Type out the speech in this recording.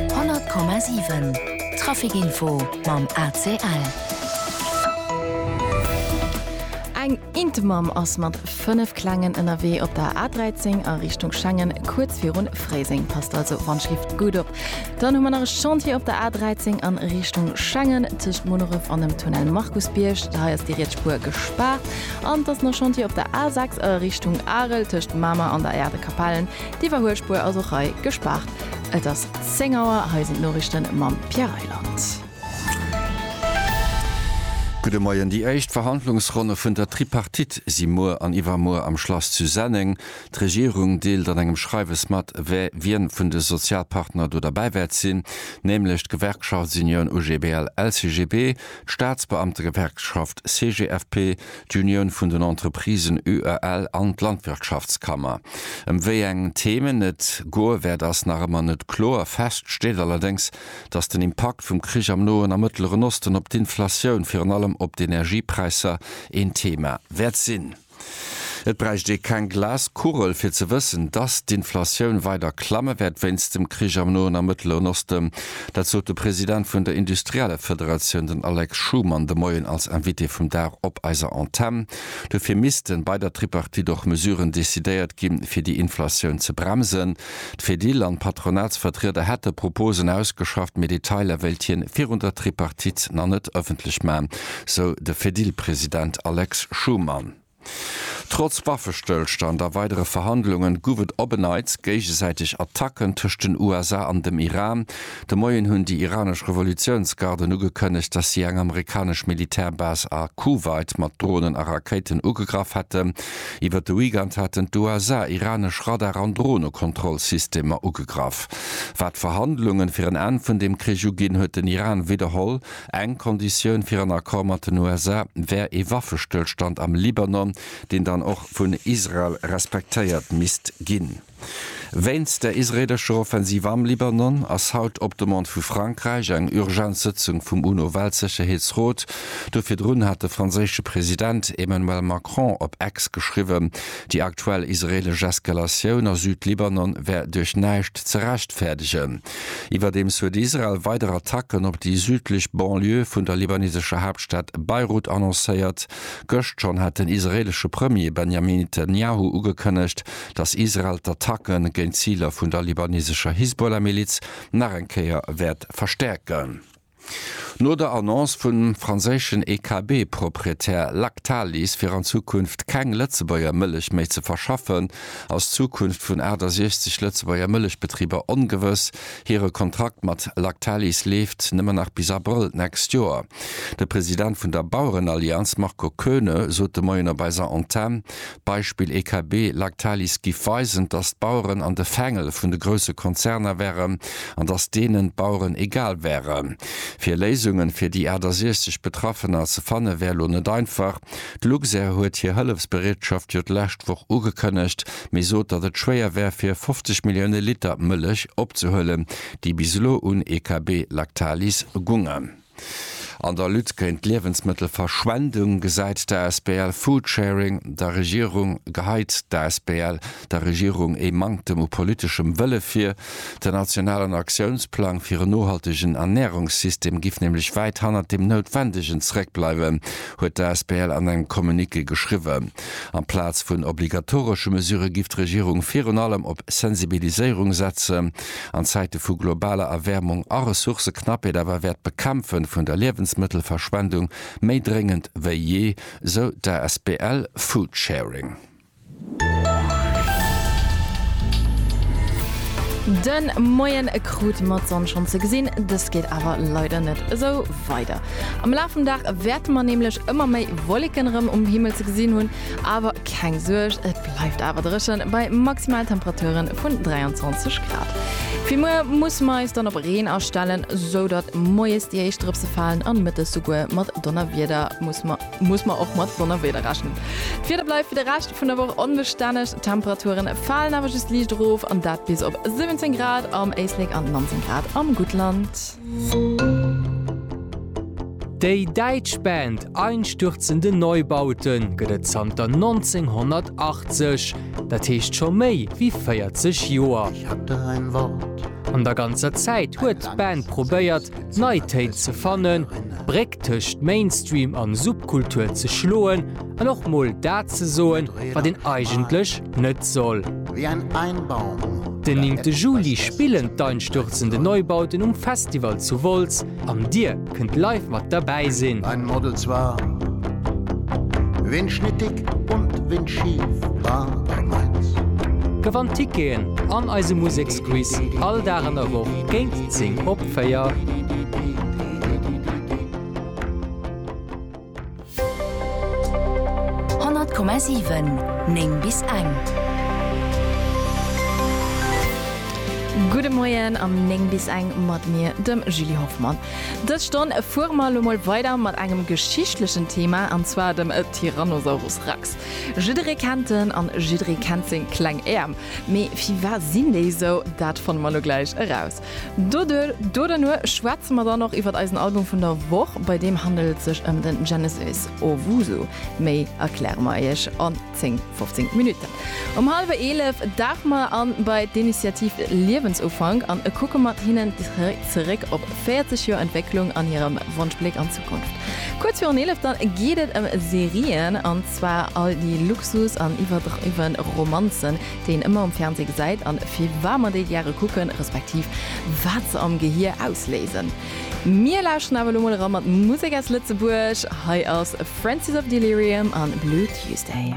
100,7 Trafic Info mam ACL. Eng Intemamm ass mat 5 Klengen ënnerwee op der A13 a Richtung Schengen, kuerz virun Fréiseng. Passt also wann d'Schlift gutt op. Dann hu mer nach e Chantier op der A13 a Richtung Schengen, tëscht Munneref an dem Tunnel Markusbierg. Hei ass déi riets Spuer gespaart. An et ass nach Chantier op der A6 a Richtung Arel, tëscht Mamer an der Aire de Capellen. D'Iwwerhuelspuer ass och hei gespaart. Et ass 10 Auer, hei sinn d'Noriichten mam Pierre Reyland. Gudde Moien. Déi éischt Verhandlungsronne vun der Tripartite si muer an iwwermuer am Schlass zu Senneng. D'Regierung deelt an engem Schreiwes mat, wee wien vun de Sozialpartner do derbäi wäert sinn, nämlech d'Gewerkschaftsunioun UGBL-LCGB, d'Staatsbeamtegewerkschaft CGFP, d'Unioun vun den Entreprisen UEL an d'Landwirtschaftskammer. Ëm wéi eng Themen et goe wäert ass nach ëmmer net kloer. Fest steet allerdéngs, datt den Impakt vum Krich am Noen a Mëttleren Osten op d'Inflatioun, virun allem op d'Energiepräisser, een Thema wäert sinn. Et bräicht ee keng Glaskugel, fir ze wëssen, dass d'Inflatioun weider klamme wäert wéinst dem Krich am Noen a Mëttleren Osten. Dat sot de President vun der Industriellefederatioun, den Alex Schuman, de Moien als Invité vum Dag op eiser Antenn. Dofir missten bei der Tripartite och Mesuren decidéiert ginn, fir déi Inflatioun ze bremsen. D'Fedil an d'Patronatsvertrieder hätte Proposen ausgeschafft, mee Detailer wéilt hien virun der Tripartite nach net ëffentlech man, sou de Fedil-President Alex Schumann. Trotz Waffestëllstand a weidere Verhandlungen, gouf et op en Neits géigesäiteg Attacken tëscht den USA an dem Iran. De Moien hunn déi iranesch Revolutiounsgarden ugekënnegt, datt si eng amerikanesch Militärbase a Kuwait mat Dronen a Rakéiten ugegraff hätten. Iwwer de Weekend haten d'USA iranesch Radar an Dronekontrollsystemer ugegraff. Wat d'Verhandlungen fir en Enn vun deem Krich uginn, huet den Iran widderholl, eng Konditioun fir en Accord mat den USA wär ee Waffestëllstand am Libanon, deen dann och vun Israel respektéiert misst ginn. Wéinst der israeelescher Offensiv am Libanon ass haut op Demande vu Frankräich eng Urgenzsëtzung vum UNO-Weltsécherheetsrot do. Virdrun hat de franséische President Emmanuel Macron op Ex geschriwwen, déi aktuell israeelesch Eskalatioun a Süd-Libanon wär duerch näischt ze rechtfäerdegen. Iwwerdeems huet Israel weider Attacken op déi südlech Banlieue vun der libanesescher Haaptstad Beirut annoncéiert. Gëscht schonn hat den israeelesche Premier Benjamin Netanjahu ugekënnegt, datt Israel d'Attacke géint d'Ziler vun der libanesescher Hisbollah-Miliz nach eng Kéier wäert verstäerken. No der Annonce vum franséischen EKB-Proprietär Lactalis fir an Zukunft keng Lëtzebuerger Mëllech méi ze verschaffen, ass d'Zukunft vun 68 Lëtzebuerger Mëllechbetriber ongewëss. Hire Kontrakt mat Lactalis leeft nëmmen nach bis Abrëll d'nächst Joer. De President vun der Bauerenallianz Marco Koeune sot de Moien op eiser Antenn, Beispill EKB, Lactalis giff weisen, dass d'Baueren an de Fängel vun de grousse Konzerner wären an dass deenen d'Baueren egal wären. Fir Léisungen fir déi 68 Betraffener ze fanne wär lo net einfach. D'Luxair huet hir Hëllefsbereetschaft jo d'lescht Woch ugekënnegt, mee sot datt et schwéier wär fir 50 Millioune Liter Mëllech opzehuelen, déi bis elo un EKB Lactalis gungen. An der Lutte géint d'Liewensmëttelverschwendung gesäit d'ASBL Foodsharing der Regierung, geheit d'ASBL der Regierung ee Manktem u politeschem Wëlle vir. Den nationalen Aktiounsplang fir en nohaltegen Ernärungssystem giff nämlech wäit hannert deem Noutwendegen zeréckbleiwen, huet d'ASBL an engem Communiqué geschriwwen. Amplaz vun obligatoresche Mesurë giff d'Regierung virun allem op Sensibiliséierung setzen. an Zäite vu globaler Erwäermung a Ressourcëknappheet awer wäert d'Bekämpfe vun der Liewensmëttelverschwendung méi dréngend wéi jee, sou d'Asbl Foodsharing. De Moien krut mer d'Sonn schonn ze gesinn, dëst geet awer leider net esou weider. Am Laf vum Dag wäerte mer nämlech ëmmer méi Wolleken erëm um Himmel ze gesinn hunn, Awer keng Suerg, et bleift awer dréchen, bei Maximaltemperature vun 23 Grad. Fir muer musse mer eis dann op Reen astellen, sou datt moies déi éischt Drëpse falen an mëttes souguer mat Donnerwieder. Muss mer och mat Donnerwieder rechnen. D'Wieder bleift fir de Rescht vun der Woch onbestänneg, d'Temperature falen awer just liicht erof, an dat bis op 17 Grad am Éislek an 19 Grad am Guttland. Déi däitsch Band Einstürzende Neubauten gëtt et zanter 1980, dat heescht scho méi wéi 40 Joer. An der ganzer Zäit huet d'Band probéiert, nei Téin ze fannen, d'Bréck tëscht Mainstream an Subkultur ze schloen. An och mol dat ze soen, wat een eigentlech net soll. Den néngte Juli spillen d'Einstürzende Neubauten um Festival zu Wolz an dir kënnt live mat derbäi sinn. Gewannt Ticketen an eise Museksquiz all Dag an der Woch géint 10 op 4. 100,7 9 bis eng. Gudde Moien am 9 bis eng mat mir, dem Julie Hoffmann. Dës Stonn fuere mer elo mol weider mat engem geschichtlechen Thema, an zwar dem Tyrannosaurus Rex. Jidderee kennt en an jidderee kennt seng kleng Äerm. Mee wie war sinn déi esou? Dat fanne mer elo gläich eraus. Doduerno schwätze mer dann och iwwert eisen Album vun der Woch. Bei deem handelt et sech ëm den Genesis Owusu. Méi erkläre mer iech an 10, 15 Minutten. Um hallwer 11 dauche mer a bei d'Initiative Liewensufank an e kucke mat hinnen zeréck op 40 Joer Entwécklung an hirem Wonschbléck an d'Zukunft. Kuerz virun 11 dann geet et ëm Serien an zwar all déi Luxus an iwwerdriwwen Romanzen, deen ëmmer um Fernseh gesäit an firwamer déi gäre kucken, respektiv wat se am Gehier ausléisen. Mir lauschteren awer elo mol era mat Musek aus Lëtzebuerg. Hei ass Francis of Delirium a Blue Tuesday.